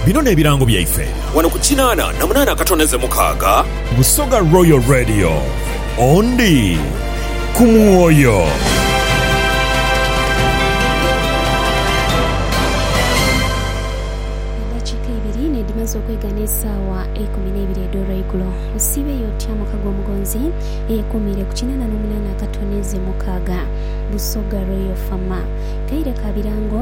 Bino n'ebirango byaife. Wano ku kinaana na munaana akatondeze mukaaga. Busoga Royal Radio, ondi ku mwoyo. Eddakiika ibiri n'edhimaze okwegana esaawa eikumi n'eibiri edh'olweigulo, osiibeyo otya muka gw'omugonzi eyeekuumiire ku kinaana n'omunaana akatondeze mukaaga? Busoga Royal FM. Kaire ka birango.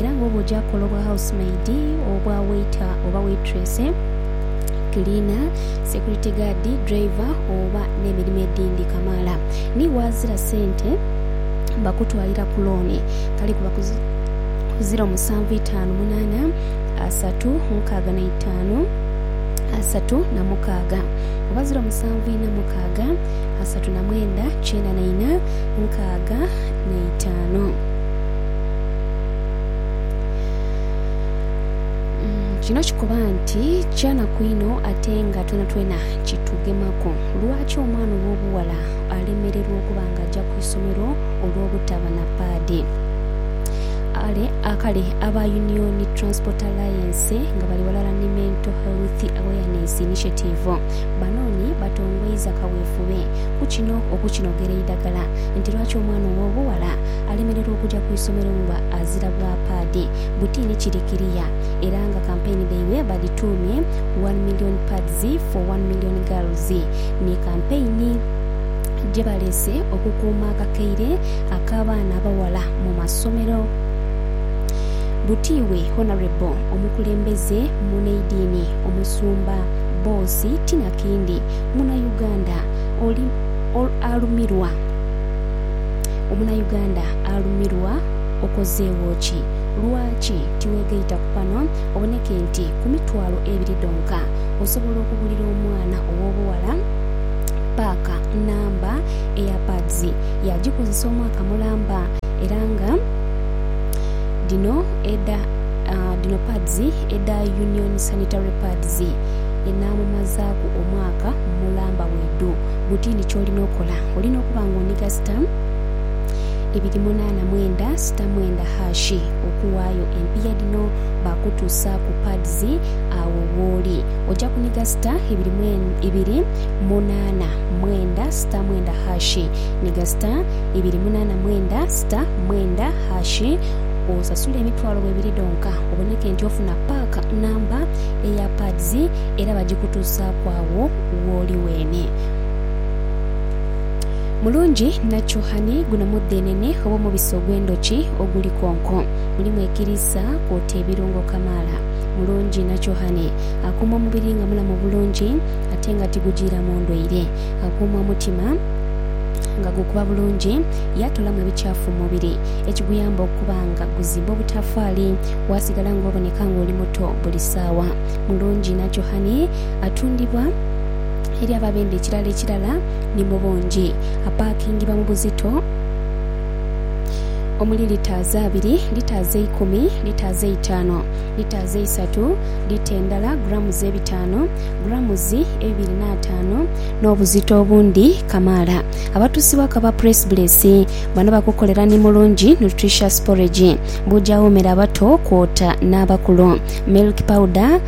era nga oba oja kola obwa house maid, obwa waiter oba waitress, cleaner, security guard, driver oba n'emirimo edhindi kamaala ni waazira sente bakutwalira ku looni kale kuba ku ziro musanvu itaanu munaana asatu mukaaga na itaanu asatu na mukaaga oba ziro musanvu ina mukaaga asatu na mwenda kyenda na ina nkaaga na itaanu. Kino kikoba nti kyanaku inho ate nga twenatwena kitugemaku. Lwaki omwana ow'obughala alemererwa okuba nga aja ku isomero olw'obutaba na paadi? Ale, a- kale aba Union Transport Alliance nga bali ghalala ni Mental Health Awareness Initiative banoonhi batongoiza kawefube ku kino okukinogera eidagala nti lwaki omwana ow'obughala alemererwa okuja ku isomero nga azira bwa paadi, buti ni kiri kiriya era nga kampeyini dhaibwe badhituumye One Million Pads for One Million Girls ni kampeyini gye baleese okukuuma akakaire ak'abaana abaghala mu masomero. Buti we Honourable omukulembeze muneidini Omusumba Boss Tinakindi, Muna Uganda, oli alumirwa. Omunayuganda alumirwa okozeegho ki? Lwaki tiweegaita ku pano oboneke nti ku mitwalo ebiri dhonka osobola okugulira omwana ow'obughala paaka nnamba Earpads yaagikozesa omwaka mulamba era nga dhino edha dhino pads edha Union Sanitary Pads enaamumazaaku omwaka mulamba bwidhu? Buti ni ky'olina okola, olina okuba ng'onhiga sita ibiri munaana mwenda sita mwenda hash okuwaayo empiiya dhino baakutuusa ku pads agho wooli. Oja kunhiga sita ibiri mwen ibiri munaana mwenda sita mwenda hash nhiga sita ibiri munaana mwenda sita mwenda hash osasule emitwalo ebiri dhonka oboneke nti ofuna pack namba eya pads era bagikutuusaaku agho wooli weene. Mulungi nakyuhani guno mudhenene oba omubisi ogw'endhoki oguli konko. Mulimu ekiriisa kwota ebirungo kamaala. Mulungi nakyuhani akuuma omubiri nga mulamu bulungi ate nga tigujiiramu ndwaire. Akuuma omutima nga gukuba bulungi yaatolamu ebikyafu mu mubiri ekiguyamba okuba nga guzimba obutafaali waasigala nga oboneka nga oli muto buli saawa. Mulungi nakyuhani atundibwa eri abo abenda ekirala ekirala ni mu bungi. Apaakingibwa mu buzito omuli litaazi abiri, litaazi eikumi, litaazi eitaanu, litaazi eisatu, lita endala grammes ebitaanu, grammes ebibiri n'ataanu, n'obuzito obundi kamaala. Abatusibwa ku aba Press Bless bano bakukolera ni mulungi nutritious porridge, buuja woomera abato kwota n'abakulu, milk powder,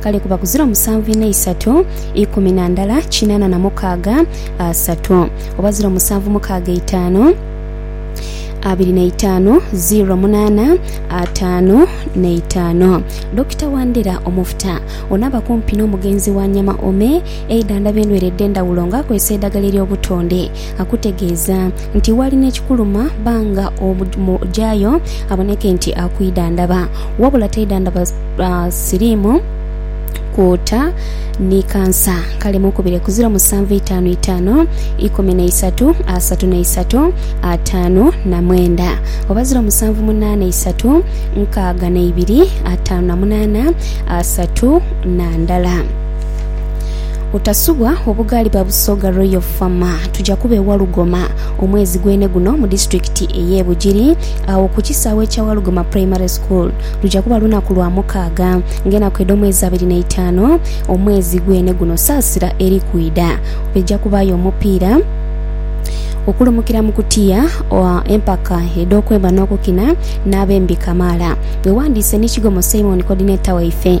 Kale kuba kuzira omusanvu ina isatu, ikumi na ndala kinana na mukaaga asatu, oba ziro musanvu mukaaga itaanu abiri na itaanu ziro munana ataanu na itaanu. Dokita Wandera omufuta ono aba kumpi n'omugenzi wa Nyama Ome eidhandhaba endwere edh'endhawulo nga akozesa eidhagala ery'obutonde. akutegeeza nti walina ekikuluma banga omujayo aboneke nti akwidhandhaba wabula taidhandhaba siriimu, kwota ni kansa. Kale mukubire ku ziro musanvu itaanu itaanu ikumi na isatu asatu na isatu ataanu na mwenda oba ziro musanvu munaana isatu nkaaga na ibiri ataanu na munaana asatu na ndala. Otasubwa obugaali ba Busoga Royal Fama tuja kuba e Walugoma omwezi gwene guno mu disitulikiti ey'e Bugiri agho ku kisaawe ekya Walugoma Primary School. Luja kuba lunaku lwa mukaaga ng'enaku edh'omwezi abiri n'eitaanu omwezi gwene guno saasira eri kwidha. Eja kubaayo omupiira okulumukira mu kutiya, empaka edh'okwemba n'okukina n'abembi kamaala. Wewandiise ni Kigomo Simon Coordinator waife.